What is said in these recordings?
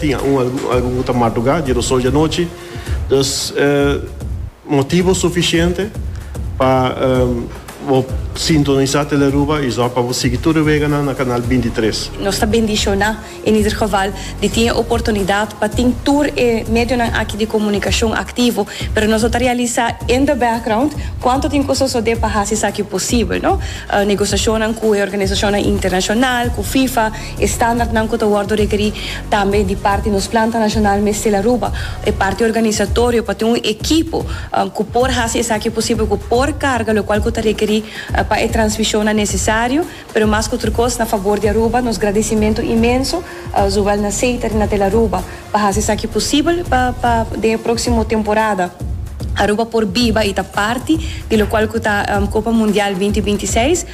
Tin algun ku ta madrugá di Rosol dianochi, dus e motibu sufisiente pa bo sintonisá Telearuba i zòrg pa bo sigui tur e weganan na kanal bintitres. Nos ta bendishoná en ieder geval di tin e oportunidat pa tin tur e medionan aki di komunikashon aktivo, pero nos lo ta realisá in the background kuantu tin ku sosodé pa hasi esaki posibel, no. Negosiashonnan ku e organisashonnan internashonal, ku FIFA. E standaardnan ku ta wòrdu rekerí tambe di parti nos planta nashonal mester a ruba e parti organisatorio pa tin un ekipo ku por hasi esaki posibel, ku por karga lokual ku ta rekerí pa e transmishonnan nesesario. Pero mas ku tur kos na fabor di Aruba, nos gradisimentu inmenso zowel na Seiter i na Tel Aruba Pa haci esaki posibel pa pa den e proximo temporada Aruba por biba y ta parti di locual cu ta Copa Mundial binti binti seis.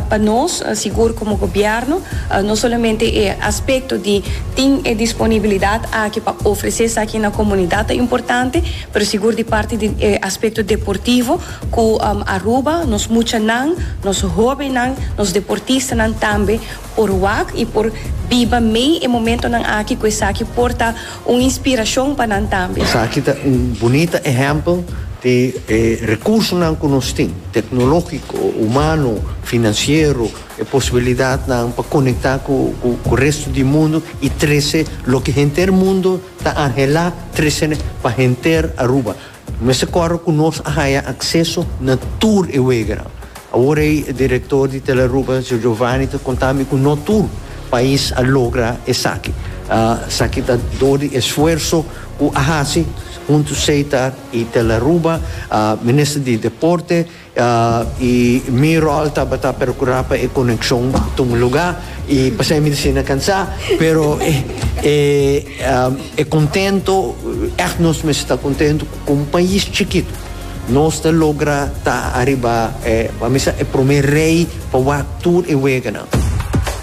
Pa nos sigur como gobierno no solamente e aspecto di tin e disponibilidad aki pa ofrece esaki na comunidad ta importante pero sigur di parti di e aspecto deportivo cu Aruba nos muchanan nos hobennan nos deportistanan tambe Por wak y por biba mey e momentonan aki cu esaki por ta un inspiracion pa nan tambe. Esaki ta un bunita ehempel di e recursonan cu nos tin, tecnologico, humano, financiero, e posibilidadnan pa conecta cu resto di mundo y trece loke henter mundo ta anhela trece pa henter Aruba. Mester kòrda ku nos a haña akseso na tur e weganan. Awor ei e direktor di Telearuba, Giovanni, ta konta mi ku no tur pais a logra esaki. Esaki ta dor di esfuerso ku a hasi huntu Seitar i Telearuba, Minister di Deporte, I mi ròl tabata perkurá pa e konekshon ta un lugá, i pasai mi ta ser na kansá, pero e e kontentu, ègt nos mester ta kontentu ku kon pais chikitu nos ta logra ta ariba e, pa mi sa, e promé rei pa wak tur e weganan.